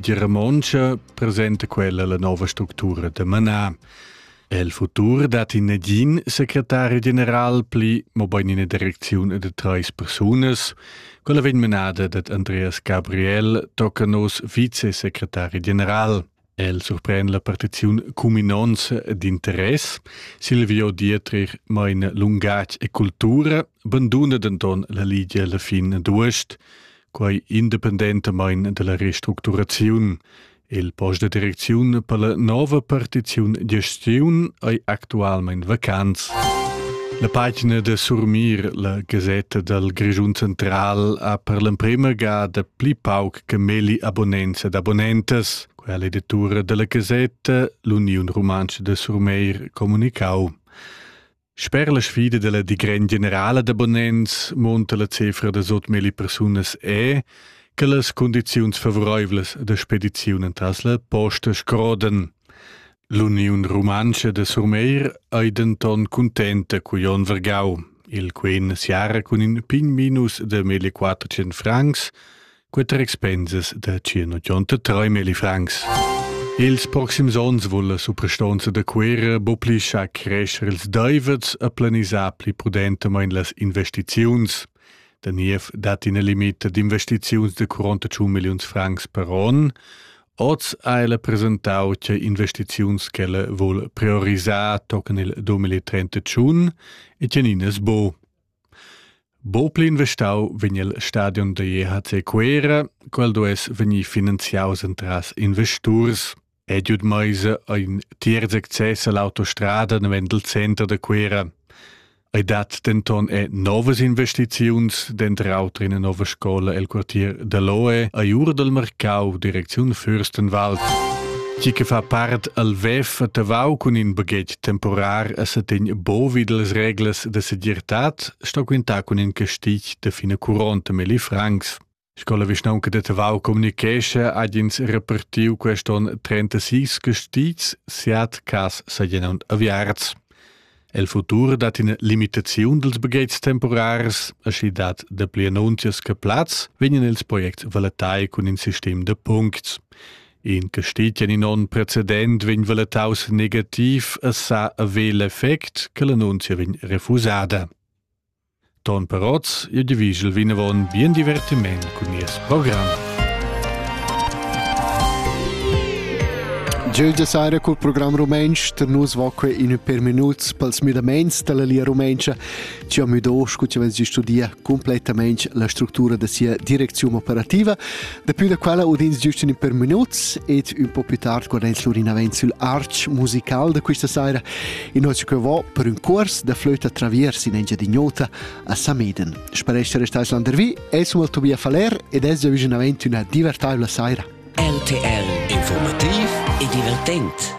Die Romontsch presenta quella la nova structura da Manar. El futur dat in negin secretari general pli, mo bein ina direcziun de treis persunas, quella vegn menada dat Andreas Gabriel tocca nos vicesecretari general. El surpren la partiziun cuminons d'interess, Silvio Dietrich meine Lungatsch e Kultur banduna denton la Ligia alla fin d'uost, quai independentamain della restructuraziun. Il post de direcziun per la nova partiziun gestiun ei actualmein vacants. La pagina de Surmir, la Gazetta dal Grischun Central, ha per l'emprema gada pli pauc che meli abonnents ed abonnentes. Quella editura della Gazetta, l'Uniun Rumantscha de Surmeir, comunicau. Sper la sfida dalla digren generala da bonens munta la cefra da sutmeli persunas è che las condiziuns favoreivlas da spediziun en Tasla posta scrodan. L'Uniun Rumantscha de Surmeir ei denton contenta cu Jon Vergau, il quen siara cun in pign minus de meglio 400 francs, Quatter expensas da circa 3.000 francs. Ils proxims onns vull la suprastonza da Cuera boplischar crescer ils deivets e planisar pli prudentamain las investiziuns. Der NIEF dat in limit d'investiziuns de 41 millions francs per on. Oz ha ella presentau che investiziuns che vuol priorisar tocan il 2031 e teninas bo. Bopli investau vegn il stadion da JHC Cuera, quel duess vegnir finanziaus entras investurs. Ediud Meise ha in tiers access all'autostrada navend il center da Cuera. Ei dat denton e novas investiziuns denter auter ina nova scola el quartier da Loe a Jurdel Marcau, direcziun Fürstenwald. Chi che fa part al WEF a Tavau cun in baghetg Temporar a setegn bovi delles reglas de segirtad sto quintar cun in castig de fine curonte Meli Franks. Scola vischnaunca de Tavau communichescha ad ins repartiu queston 36 castigs siat cas sagenund aviarts. El futur dat in limitaziun dels bagheits temporars, aschi dat de pli annunzias che plaz vegnan ils projects valetai cun in sistem de puncts. In che steht in onn precedent vegn valetaus negativ e sa avere l'effect che l'annunzia vegn refusada. Ton Peroz, ihr Division Winavon, bien divertiment cun nies programm. Gioia Sara col programm rumentsch ter nus vacque in per minuts pels müdamaints della lia rumentscha. Ci am müdo scu ci vens di studia cumplettamain la structura da sia direcziun operativa. Dapi da quella udins giust in per minuts ed un po più tard quando ins l'urin avent sul arch musical da questa sera in noce che va per un cors da flöta traviers in Engiadignota a Sameden. Spareste restais landervi, es un Tobia Faller ed es già vicino avent una divertaivla sera. RTL Informativ e divertent.